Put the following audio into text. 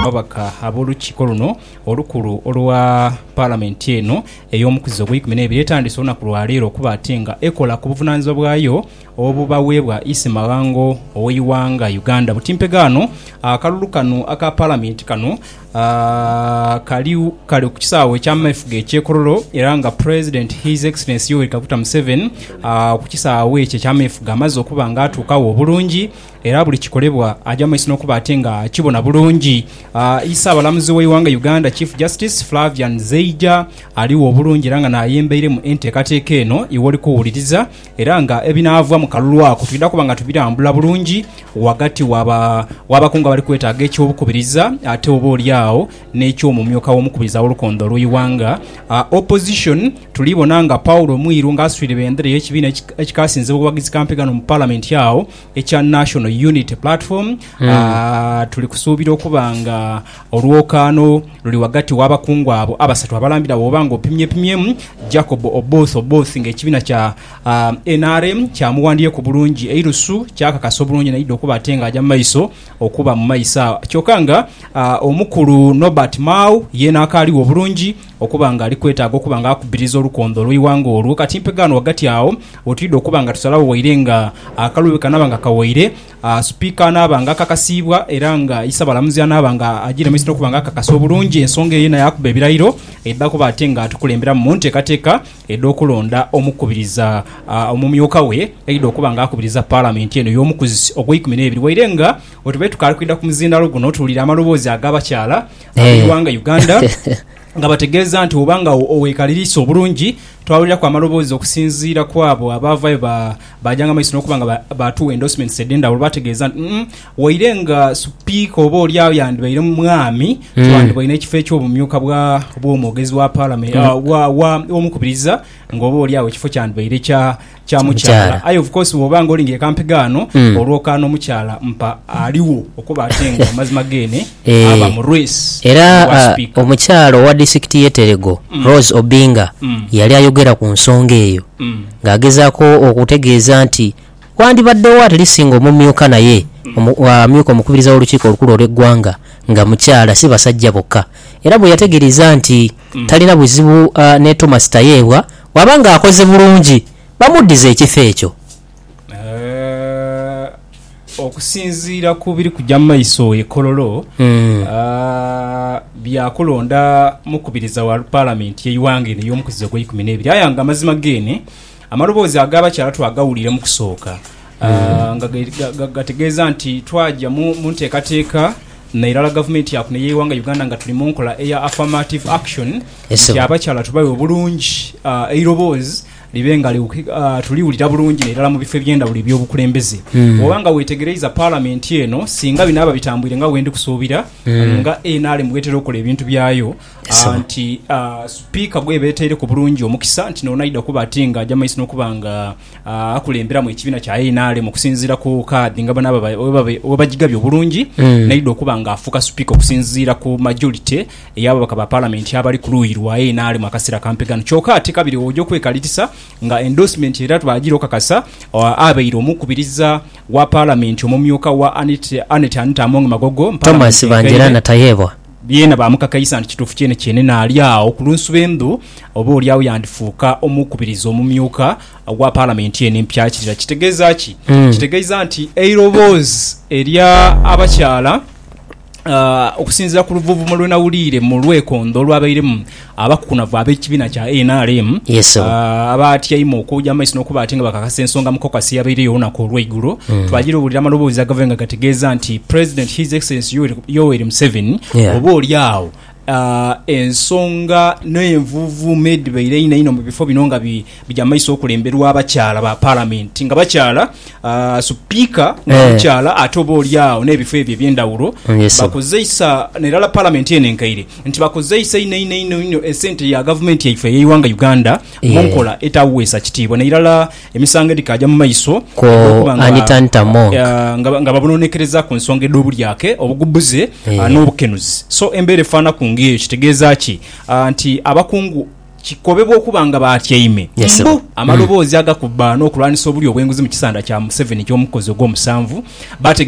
ababaka ab'olukiiko luno olukulu olwa palamenti eno ey'omukuzi ogw'eikumi n'ebiri etandise olunaku lwaleero okuba ate nga ekola ku buvunanyizibwa bwayo obubaweebwa Isi Maghango ow'eighanga Uganda. Butimpega ano akalulu kano aka palamenti kano ah, kali kali ku kisaawe eky'amefuga eky'e Kololo era nga President His Excellency Yoweri Kaguta Museveni ah, ku kisaawe ekyo eky'amefuga amaze okuba nga atuukawo obulungi Era buli kikolebwa aja maiso n'okuba ate nga akibona bulungi. Ii, Ssaabalamuzi w'eighanga Uganda, Chief Justice Flavian Zeija aligho obulungi era nga n'ayembeire mu enteekateeka eno iwoli kuwuliriza era nga ebinaava mu kalulu ako twidha kuba nga tubirambula bulungi ghagati w'abakungu abali kwetaaga eky'obukubiriza ate oba oli agho n'eky'omumyuka w'omukubiriza w'olukondo olw'eighanga Opposition tuli bona nga Paul Mwiru nga asitwire bendera y'ekibiina ekikasinze obuwagizi ka mpiga no mu Palamenti agho ekya National Unity Platform mm. uh, tuli kusuubira okuba nga olwokaano luli wagati w'abakungu abo abasatu abalambira woba nga opimyepimyemu Jacob Oboth Oboth ng'ekibiina kya uh, ah, NRM kyamuwandiyeku bulungi eirusu kyakakasa obulungi naidde okuba ate ng'aja mu maiso okuba mu maiso awo kyokka nga uh, omukulu Nobert Mao yeena akaaliwo obulungi Okuba nga ali kwetaaga okuba nga akubiriza olukondho olw'eighanga olwo, ka kimpe ghano ghagati agho we twidha okuba nga tusalagho waire nga akalu bwe kanaaba nga kawaire, Sipiika anaaba nga akakasiibwa era nga Isabalamuzi anaaba nga agiiremesa n'okuba nga akakasa obulungi ensonga eyo yena yaakuba ebirairo edha kuba ate nga atukulemberamu mu nteekateeka edh'okulonda omukubiriza omumyuka we aidha okuba nga akubiriza Palamenti eno y'omukuzisi ogw'eikumi n'ebiri. Waire nga bwe tubaire tukaali kwidha ku muzindaalo guno, tuwulire amaloboozi ag'abakyala. ab'eighanga Uganda nga bategeeza nti bwoba nga owekaliriisa obulungi twawuliraku amaloboozi okusinziira kwabo abaavaayo baajanga mu maiso n'okuba nga baatuwa endorsements edhendhawulo baategeeza nti umm waire nga Sipiika oba olyagho yandibaire Mwami twandibaire n'ekifo eky'obumyuka bw'omwogezi wa Palamenti, w'Omukubiriza nga oba olyagho ekifo kyandibaire kya kya mukyala aye of course bwoba nga olinga ekampiga ano mm. olwoka n'omukyala mpa aliwo okuba ate nga amazima gene eh. aba mu race era uh, omukyala owa disikiti y'eterego mm. rose obinga mm. yali ayogera ku nsonga eyo mm. ng'agezaako okutegeeza nti wandibaddewo atlisi nga omumyuka naye amyuka omukubiriza w'olukiiko olukulu olw'eggwanga nga mukyala si basajja bokka era bwe yategeereza nti mm. talina buzibu uh, ne thomas tayeebwa Bw'aba ng'akoze bulungi, bamuddize ekifo ekyo. Okusinziira ku biri kugya mu maiso e Kololo, bya kulonda mukubiriza wa Palamenti y'eighanga eno ey'omukuzizo ogw'eikumi n'ebiri. Aye nga mazima geene, amaloboozi ag'abakyala twagawulira mu kusooka. Ah, nga ga- ga- ga- gategeeza nti twaja mu mu nteekateeka na irala gavumenti yakuno ey'eighanga Uganda nga tuli mu nkola eya affirmative action Yes, nti sebo. abakyala tubawe obulungi ah, eiroboozi libe nga liwuki- ah, tuliwulira bulungi nairala mu bifo eby'endawulo eby'obukulembeze Mm. oba nga weetegereiza palamenti eno singa binaaba bitambwire nga wendi kusuubira Mm. nga nrm bwetera okola ebintu byayo Yes, ah, sebo. nti ah, sipiika bweba etaireku bulungi omukisa nti noonaidha kuba ati nga aja maiso n'okuba nga akulemberamu ekibiina kya NRM okusinziira ku kaadi nga bona webagigabye obulungi mm. naidha okuba nga afuuka sipiika okusinziira ku majority ey'ababaka ba palamenti abali ku luuyi lwa NRM akaseera kampi gano kyoka ate kabiri oja okwekalirisa nga endorsement era twagira okakasa abeire omukubiriza wa palamenti omumyuka wa Annet Anita Among Magogo Thomas Bangira Natayebwa Beena baamukakaisa nti kituufu kyenekyenhe naali agho ku lunsu lw'endhu, oba oli agho yandifuuka omukubiriza omumyuka ogwa Palamenti eno empya. Kira kitegeeza ki? Kitegeeza nti eiroboozi erya abakyala okusinziira ku luvuuvumo lwe nawuliire mu lwekondho olwabairemu, Abakukunavu ab'ekibiina kya nrm abaatyaime okwoja amaiso n'okuba ate nga bakakasa ensonga mu caucus eyabaire olunaku olweigulo twajira owulira amaloboozi agave nga gategeeza nti President His Excellency Yoweri Museveni oba oli agho ensonga n'envuuvuumo edhibaire einho einho mu bifo bino nga Bigya mu maiso okulemberwa abakyala ba Palamenti nga bakyala Supiika nga mukyala ate oba oli agho n'ebifo ebyo eby'endhawulo bakozeisa n'erala Palamenti eno enkaire nti bakozeisa inho inho inho inho esente ya Gavumenti yaife ey'eighanga Uganda mu nkola etaweesa kitiibwa n'erala emisango edhikaagya mu maiso egy'okuba nga babonoonekereza ku nsonga edh'obulyake, obugubuze n'obukenuzi. So embeera efaanaku ng'eyo kitegeeza ki? Nti abakungu. kikobebwa okuba nga baatyaime mbu amaloboozi agakubba n'okulwanisa obulyo obw'enguzi mu kisanda kya Museveni eky'omukozi ogw'omusanvu, baategeezebwa